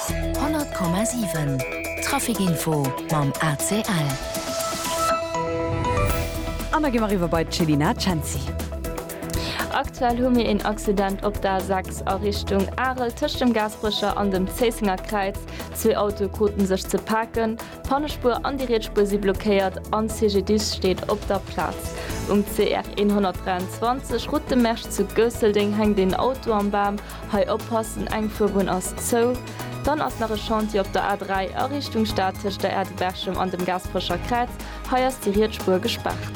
100,7 Traficinfo mam ACL. An da gi mer eriwwer bei d'Chelina Cenci. Aktuell hu mir een Accident op der A6 a Richtung Arel tëscht dem Gaasperecher an dem Zéissenger Kräiz. Zwee Autoe krute sech ze paken, d'Pannespuer an déi riets Spuer si blockéiert an d'CGDIS steet op der Plaz. Um CR 123, Route de Mersch zu Goesseldeng, hänkt een Auto am Bam Hei oppassen, eng Fuerbunn ass zou. Dann ass nach e Chantier op der A3 a Richtung Stad tëscht der Aire de Berchem an dem Gaasperecher Kräiz. Hei ass déi riets Spuer gespaart.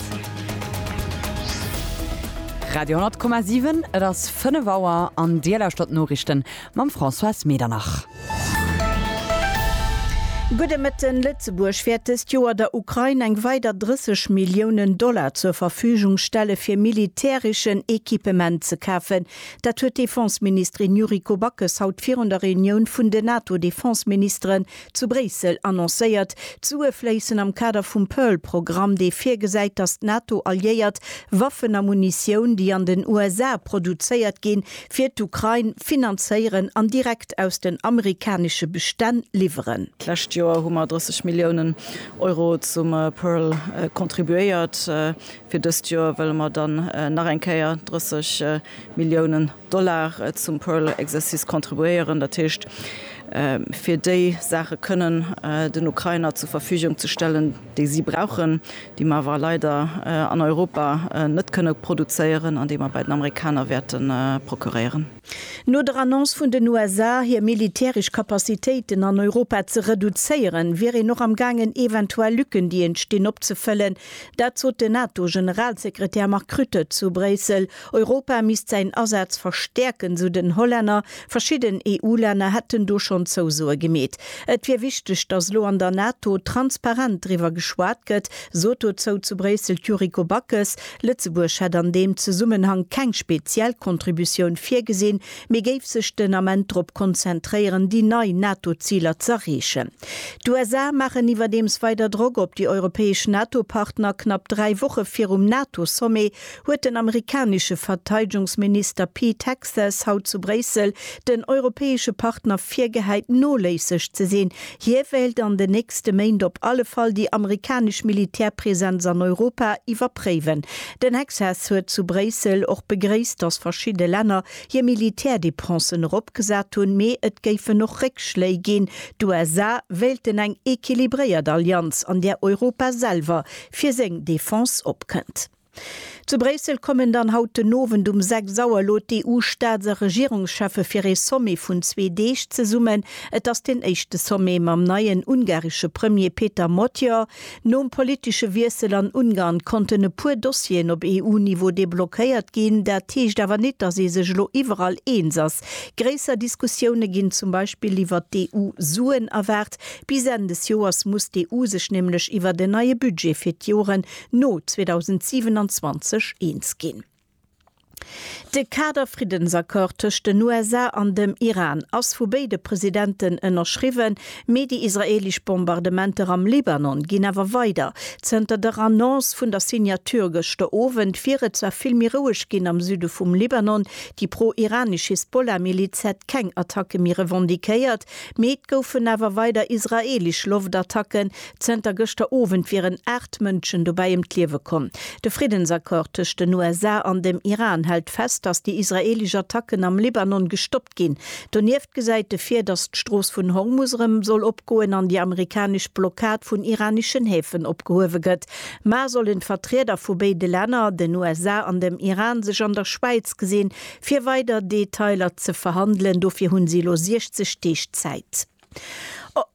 Radio 10,7, et ass 5 Auer an Dir lauschtert d'Noriichten mam Françoise Medernach. Gudde Mëtten, Lëtzebuerg wäert dëst Joer der Ukrain eng weider 30 Milliounen Dollar zur Verfügung stelle fir militäreschen Equipement ze kafen, Dat huet d'Defenseministerin Yuriko Backes haut virun der Reunioun vun den NATO-Defenseministeren zu Bréissel annoncéiert. D'Sue fléissen am Kader vum Pearl-Programm, dee virgesäit, datt d'NATO-Alliéiert Waffen a Munitioun, déi an den USA produzéiert ginn, fir d'Ukrain finanzéieren an direkt aus den amerikanesche Bestänn liwweren. D'lescht Joer hu mer 30 Milliounen Euro zum Pearl kontribuéiert. Fir dëst Joer wëlle mer dann nach eng Kéier 30 Milliounen Dollar zum Pearl Exercice contribuéieren, dat heescht fir déi Saache kënnen den Ukrainer zur Verfügung ze stellen, déi si brauchen, déi mer awer leider an Europa net kënne produzéieren an déi mer bei den Amerikaner wäerte procuréieren. No der Annonce vun den USA, hir militäresch Capacitéiten an Europa ze reduzéieren, wier een och am gaangen eventuell Lücken, déi entstinn, opzefëllen. Dat sot den NATO-Generalsekretär Mark Rutte zu Bréissel. Europa misst säin Asaz verstäerken, sou den Hollänner. Verschidden EU-Länner hätten do schonn Zousoe gemeet. Et wier wichteg, datt elo an der NATO transparent driwwer geschwat gëtt, sot dozou zu Bréissel d'Yuriko Backes, Lëtzebuerg hätt an deem Zesummenhang keng speziell Kontributioun virgesinn, mee géif sech den Ament drop konzentréieren, déi nei NATO-Ziler z'erreechen. D'USA maachen iwwerdeems weider Drock op déi europäesch NATO-Partner. Knapp dräi Woche virum NATO-Sommet huet den amerikanesche Verteidegungsminister Pete Hegseth haut zu Bréissel den europäesche Partner virgehäit, noléisseg ze sinn, Hie wéilt an den nächste Méint op alle Fall déi amerikanesch Militärpresenz an Europa iwwerpréiwen. Den Hexhas huet zu Bréissel och begréisst, datt verschidde Länner hir Militärdepensen eropgesat hunn, mee et géifen och Réckschléi ginn. D'USA wéilten eng equilibréiert Allianz, an där Europa selwer fir seng Defense opkënnt. Zu Bréissel kommen dann haut den Owend um 6 Auer elo d'EU-Staats a Regierungscheffe fir ee Sommet vun zwee Deeg zesummen. Et ass deen éischte Sommet mam neien ungaresche Premier Péter Magyar. Nom politesche Wiessel an Ungarn konnten e puer Dossieren op EU-Niveau deblockéiert ginn. Dat heescht awer nit, datt ee sech elo iwwerall eens ass. Gréisser Diskussioune ginn zum Beispill iwwert d'EU-Suen erwaart. Bis Enn des Joers muss d'EU sech nämlech iwwert en neie Budget fir d'Joren no 2027 eens ginn. De Kader-Friddensaccord tëscht den USA an dem Iran ass vu béide Presidenten ënnerschriwwen, mee déi israeelesch Bombardementer am Libanon ginn awer weider. Zënter der Annonce vun der Signature gëschter Owend wier et zwar vill méi roueg ginn am Süde vum Libanon. Déi pro-iranesch Hisbollah-Miliz hätt keng Attacke méi revendiquéiert, Mee et goufen awer weider israeelesch Loftattacken. Zënter gëschter Owend wieren 8 Mënschen dobäi ëm d'Liewe komm. De Friddensaccord tëscht den USA an dem Iran hält fest, datt déi israeelesch Attacken am Libanon gestoppt ginn. Donieft gesäit e vir, datt d'Strooss vun Hormus erëm soll opgoen an déi amerikanesch Blockad vun iraneschen Häfen opgehuewe gëtt. Mar sollen d'Vertrieder vu béide Länner, den USA an dem Iran, sech an der Schwäiz gesinn, Fir weider Detailer ze verhandelen. Dofir hunn si elo 60 Deeg Zäit.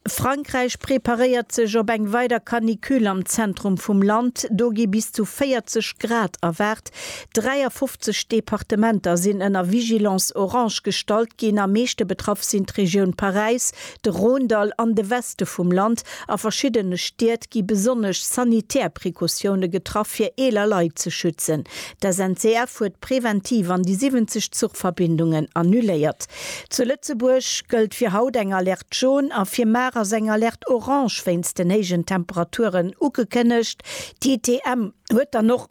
Frankräich preparéiert sech op eng weider Canicule. Am Zentrum vum Land, do gi bis zu 40 Grad erwaart. 53 Departementer sinn ënner Vigilance orange gestallt ginn. Am meeschte betraff sinn d'Regioun Paräis, de Rhône-Dall an de Weste vum Land. A verschiddene Stied gi besonnesch sanitär Precautioune getraff, fir eeler Leit ze schützen. D'SNCF huet. Preventiv an déi 70 Zuchverbindungen annuléiert. Zu Lëtzebuerg gëllt fir haut eng Alerte Jaune a fir mar ass eng Alerte Orange wéinst den héijen Temperaturen ugekënnegt. D'ITM huet dann och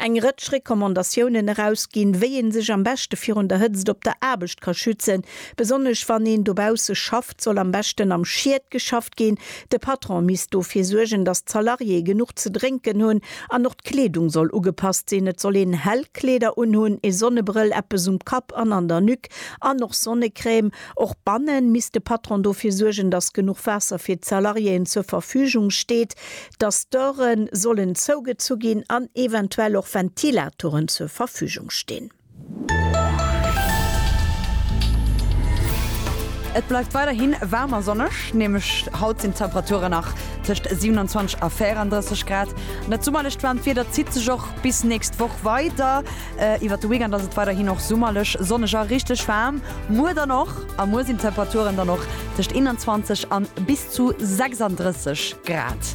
eng Rëtsch Recommandatiounen erausginn, wéi ee sech am beschte virun der Hëtzt op der Aarbecht ka schützen, besonnesch wann een dobausse schafft. Konzept soll am beschten am Schied geschafft ginn. De Patron misst dofir suergen, datt d'Salariéë genuch ze drénken hunn an och d'Kleedung soll ugepasst sinn. Et soll een hell Kleeder unhunn, ee Sonnebrëll, eppes um Kapp an an der Nuque an och Sonnecrème. Och banne misst de Patron dofir suergen, datt genuch Waasser fir d'Salariéeën zur Verfügung steet, datt d'Döre sollen zougezu ginn an eventuell och Ventilatoren zur Verfügung stinn. Et bleift weiderhi waarm a sonneg, nämlech haut sinn d'Temperature nach tëscht 27 a 34 Grad. Dat summerlecht waarmt Wieder zitt sech och bis nächst Woch weider. Iwwert de Weekend ass et weiderhin och summerlech, sonneg a richteg waarm. Muer dann och, a muer sinn d'Temperaturen dann och tëscht 21 a bis zu 36 Grad.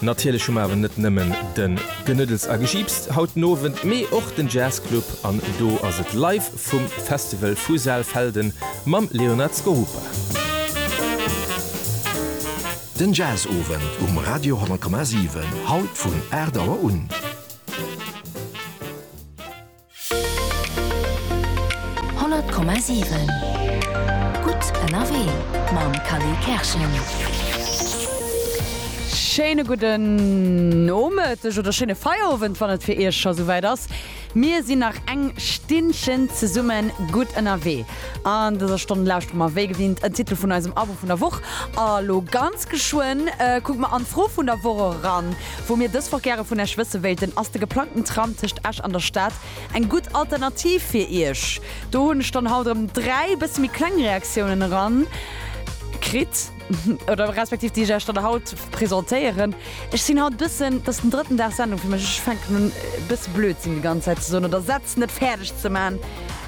Natierlech hu mer awer net nëmmen den Genuddels a Gejiips haut den Owend, mee och den Jazz Club an do ass et live vum Festival vu Saalfelden mam Leonard Skorupa. Den Jazz Owend um Radio 10,7 haut vun 8 Auer un. 100,7 Gutt ënnerwee mam Khalil Kerschen. Schéine gudden Nomëtteg oder schéine Feierowend, wann et fir Iech scho souwäit ass. Mir sinn nach eng Stinnchen zesumme gutt ënnerwee. An dëser Stonn lauschtere mer wéi gewinnt en Titel vun eisem Abo vun der Woch. A lo ganz geschwënn kucke mer an d'Fro vun der Woch eran. Wou mir dës Woch gäre vun Iech wësse wéilten, ass de geplangten Tram tëscht Esch an der Stad eng gutt Alternativ fir Iech? Do hunn ech dann haut erëm dräi bësse méi kleng Reaktiounen eran kritt oder respektiv déi ech Iech dann haut presentéieren. Ech sinn haut bëssen, dat ass den drëtten Dag Sendung fir mech, ech fänken un e bësse Blödsinn déi ganz Zäit ze soen oder Sätz net fäerdeg ze man,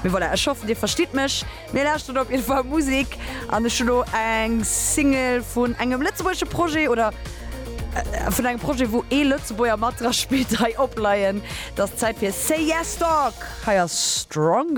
mee voilà, ech hoffen Dir verstitt mech. Mir lauschteren op jidde Fall Musik an ech hu lo eng Single vun engem lëtzebuergesche Projet oder vun engem Projet wou ee Lëtzebuerger mat dra spillt hei opleien. Et ass Zäit fir Say Yes Dog, hei ass Stronger.